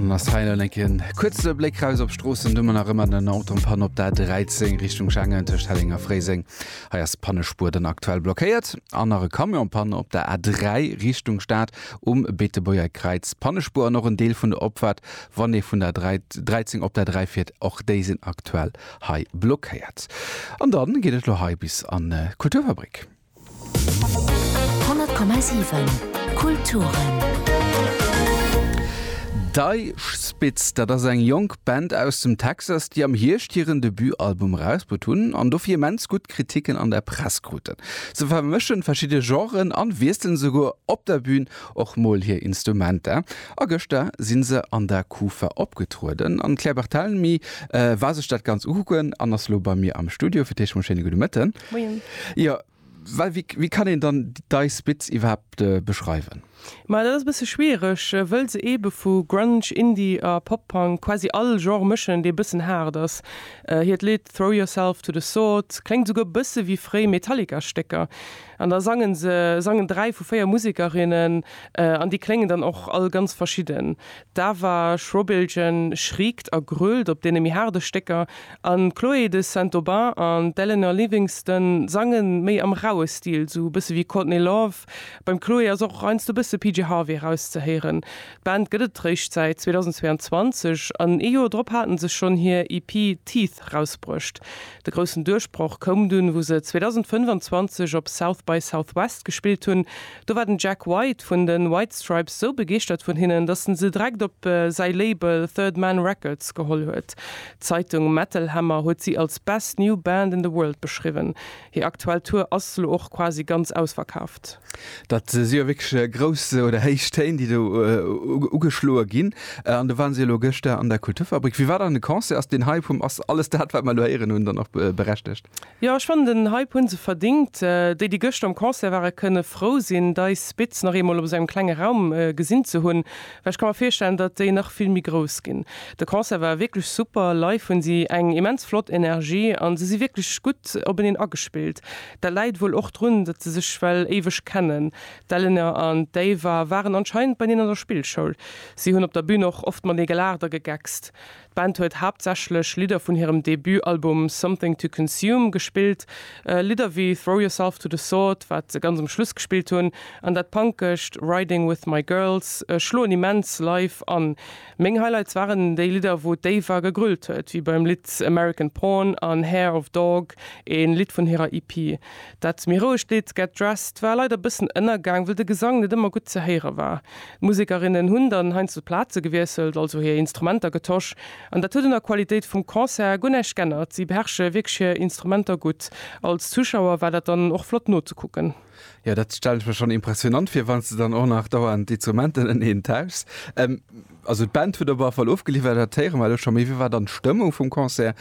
Mastheinenken kuze Bléck raus op Stroossen dummer nach ëmmer den Autopan op der 13 Richtung Schengen tech Hellinger Fréiseng hei ass Pannespuer den aktuell blockéiert an nach e Camionpanne op der A3 Richtung Staat um Beetebuerger Kräiz Pannespuer an och en Deel vun der Opfahrt wann ee vun der 13 op der 3 fiert och déi sinn aktuell hei blockéiert an dann geet et lo hei bis an äh, Kulturfabrik. 100,7 Kulturen. Dei Spitz, dat ass eng jonk Band aus dem Texas, déi am Hierscht hiren Debutalbum erausbruet hunn an dofir immens gutt Kriticken an der Press kruten. Se vermëschen verschidde Genren an wiesselen souguer op der Bün och mol hir Instrumenter. A gëschter si se an der Kufa opgetrueden an d'Claire Barthelemy war sech dat Ganzt ukucken an ass lo bei mir am Studio. Fir d'éischt mol schéine gudde Mëtten. Moien. Jo, well wéi, wéi kann een dann d'Ice Spitz iwwerhaapt beschreiwen? Ma dat ass e bësse schwiereg, wëll se eebe vu Grunge, Indie a Pop-Punk quasi all Genre mëschen, dee bëssen haart ass. Hiert Lidd Throw Yourself to the Sword kléngt esouguer e bësse wéi fréi Metallica-Stécker. An da sangen se, sangen dräi vu véier Musekerinnen, an déi kléngen dann och all ganz verschidden. D'Ava Schrobiljan schriekt a grölt op deene méi haarde Stécker an d'Chloé de Saint-Aubin an d'Eleanor Livingston sange méi am raue Stil, sou e bësse wéi Courtney Love. Beim Chloé ass och heiansdo e bësse PJ Harvey erauszehéieren. D'Band gëtt et réischt säit 2022 an ee Joer drop hate se schonn hir EP Teeth rausbruecht. De groussen Duerchbroch koum dunn, wou se 2025 op South by Southwest gespillt hunn, Do war den Jack White vun de White Stripes sou begeeschtert vun hinnen, datt en se direkt op säi Label Third Man Records geholl huet. D'Zeitung Metal Hammer huet si als Best New Band in the World beschriwwen. Hir aktuell Tour ass lo och quasi ganz ausverkaaft. Dat si jo wierklech grouss oder héich Téin, déi do ugeschloe ginn. An do ware si elo gëschter an der Kulturfabrik. Wéi war dann de Concert? Ass den Hype vum Ass alles dat, wat mer elo héieren hunn, dann och berechtegt? Jo ech fannen den Hype hun se verdingt. Déi déi gëschter um Concert waren kënne frou sinn deis Spitz nach eemol op esou engem klenge Raum gesinn ze hunn, well ech ka mer virstellen datt déi nach vill méi grouss ginn. De Concert war wierklech super, live hunn si eng immens flott Energie an se si wierklech gutt openeen agespillt. Dat läit wuel och drun datt se sech well éiweg kennen. D'Elena an d'Ava waren anscheinend beineen an der Spillschoul. Si hunn op der Bühn och oft matenee gelaacht a gegeckst. D'Band huet haaptsächlech Lidder vun hirem Debut-Album Something to Consume gespillt, Lidder wéi Throw Yourself to the Sword, wat se ganz um Schluss gespillt hunn, an dat Punkescht Riding With My Girls schloen immens live an. Meng Highlights waren déi Lidder, wou d'Ava gegrölt huet, wéi beim Lidd American Porn an Hair of Dog, ee Lidd vun hirer EP. Dat méi rouegt Lidd Get Dressed war leider bëssen ënnergaang, wëll de Gesang net ëmmer gutt ze héiere war. D'Musekerinnen hunn dann heiansdo d'Plaze gewiesselt, also hir Instrumenter getosch, an dat huet un der Qualitéit vum Concert guer näischt g'ännert. Si beherrsche wierklech hir Instrumenter gutt. Als Zuschauer war dat dann och flott nozekucken. Jo, dat stellen ech mer schonn impressionant vir, wann s de dann och nach dauernd d'Instrumenten ëneen tauschs. Also d'Band huet op alle Fall ofgeliwwert, dat héiere mer elo scho. Mee wéi war dann d'Stëmmung vum Concert,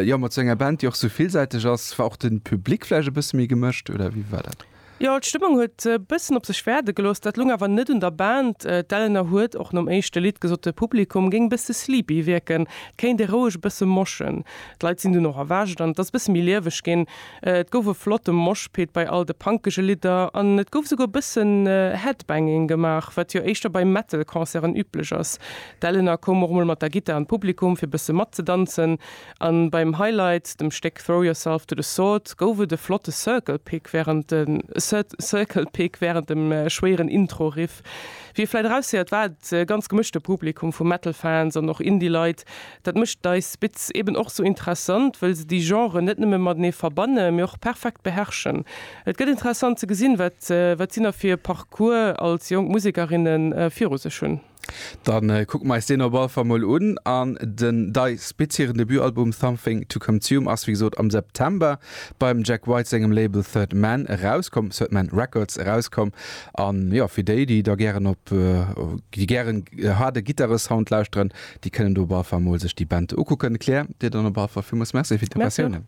jo mat esou enger Band, déi och esou villsäiteg ass? War och de Public vläicht e bësse méi gemëscht oder wéi war dat? Jo, d'Stëmmung huet e bëssen op sech wäerte gelooss. Dat loung awer net un der Band. D'Eleanor huet och nom éischte Lidd gesot, de Publikum géing e bësse sleepy wierken, et kéint ee roueg e bësse moschen. D'Leit sinn dunn och erwächt an et ass e bësse méi lieweg ginn. Et gouf e flotte Moshpit bei all de punkege Lidder an et gouf esouguer e bëssen Headbanging gemaach, wat jo éischter bei Metal-Concerten üblech ass. D'Eleanor koum och mol mat der Gittar an d'Publikum, fir bësse matzedanzen. An beim Highlight, dem Stéck Throw Yourself to the Sword, gouf et e flotte Circle Pig wärend dem schwéieren Intro-Riff. Wéi ee vläit eraushéiert, war et e ganz gemëschte Publikum vu Metal-Fans an och Indie-Leit, Dat mécht dei Spits eben och sou interessant, wëll se déi Genren net nëmme matenee verbanne mee och perfekt beherrschen. Et gëtt interessant ze gesinn, wat wat si nach fir e Parcours als jonk Musekerinne viru sech hunn. Dann kucke mer eis deen op alle Fall mol un. An den dei Spits hiren Debutalbum Something To Comtume ass wéi gesot am September beim Jack White sengem Label Third Man erauskomm, Third Man Records erauskomm. An jo, fir déi, déi da gären op déi gären haarde Gittaresound lauschteren, Déi kënnen do op alle Fall mol sech déi Band ukucken. Claire, dir dann op alle Fall villmools Merci fir d'Informatiounen.